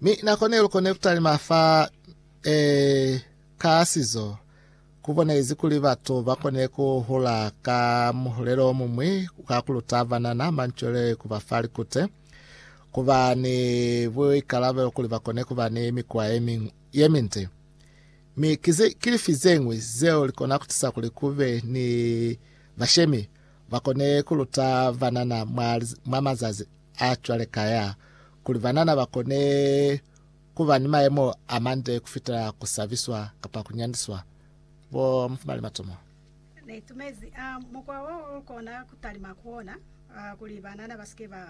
Mi nako ne lu kone ku talima fa eh, ka sizo ku bonezi kuli batu ba kone ku hula ka muhulelo o mumwi ka ku luta banana manchwele ku ba fa likute ku ba ni buikalabelo kuli ba kone ku ba ni mikwa ye ming- ye minde mi kize kilifi zeñwi zeo likona kutisa kuli kube ni bashemi ba kone ku luta banana mwa, mwa mazazi a cwale kaya, kuli banana ba kone ku ba ni mayemo a mande ku fitela ku sabiswa kapa ku nyandiswa. Bo mufumali matomo. Ne itumezi a mukwa wo lu kona ku talima ku ona, a, kuli banana ba si ke ba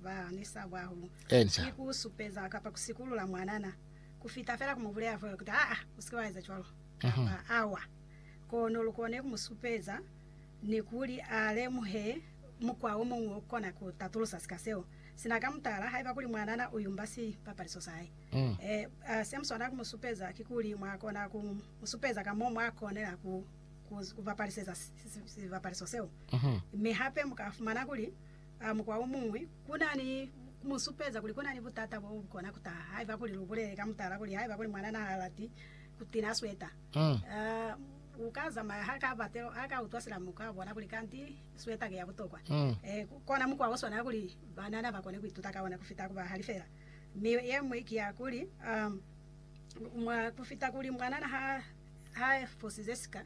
ba ni sabo hahulu, Enca. ki ku supeza kapa ku sikulula mwanana, ku fita fela ku mu bulela fela kuti, Aa, u si ke wa eza cwalo, kapa, Awa. Kono lu kone ku mu supeza, ni kuli a lemuhe mukwa o muñwi o kona ku tatulusa sika seo sina. Ka mutala, haiba kuli mwanana u yumba sipapaliso sa hae, se mu swanela ku mu supeza kikuli mwa kona ku mu supeza ka mo mwa konela ku ku bapaliseza sipapaliso seo. Mi hape mu ka fumana kuli mukwa o muñwi ku na ni ku mu supeza kuli ku na ni butata bo bu kona ku taha haiba kuli lu bulele ka mutala kuli haiba kuli mwanana ha lati ku tina sweta, Aa, u ka zamaya ha ka bate, a ka utwa sina muku a bona kuli kanti sweta ki ya butokwa. Ee, ku kona mukwa o swana kuli banana ba kone ku ituta ka ona ku fita ku bahali fela. Mi ye ñwi ki ya kuli, mwa ku fita kuli mwanana ha, ha fosize sika,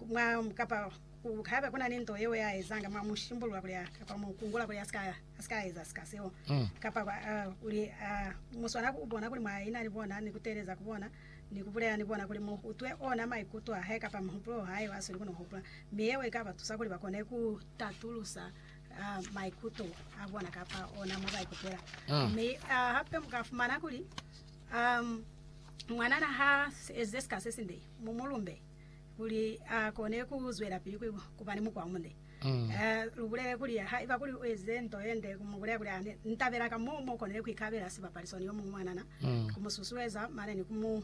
mwa, kapa ku, haiba ku na ni nto yeo ya ezanga, mwa mu shimbulula kuli a, kapa mu kungula kuli a si ka, a si ka eza sika seo. Kapa, kuli, a, mu swana ku bona kuli mwa ina ni bona ni ku teeleza ku bona. ni ku bulela ni bona kuli mu utwe ona maikuto a hae kapa mihupulo yo hae yo a sweli ku no hupula, mi yeo i ka ba tusa kuli ba kone ku tatulusa maikuto a bona kapa ona mo ba ikutwela. Mi hape mu ka fumana kuli mwanana ha ezize sika se sinde, mu mu lumbe kuli a kone ku zwelapili ku ba ni mukwa o munde. Lubulele kuli, Haiba kuli uezize nto yende, kumubulela kuli, Ane nitabela ka mo mokonile kuikabela sibapaliso ni yomuñwi mwanana, kumususueza mane ni ku mu.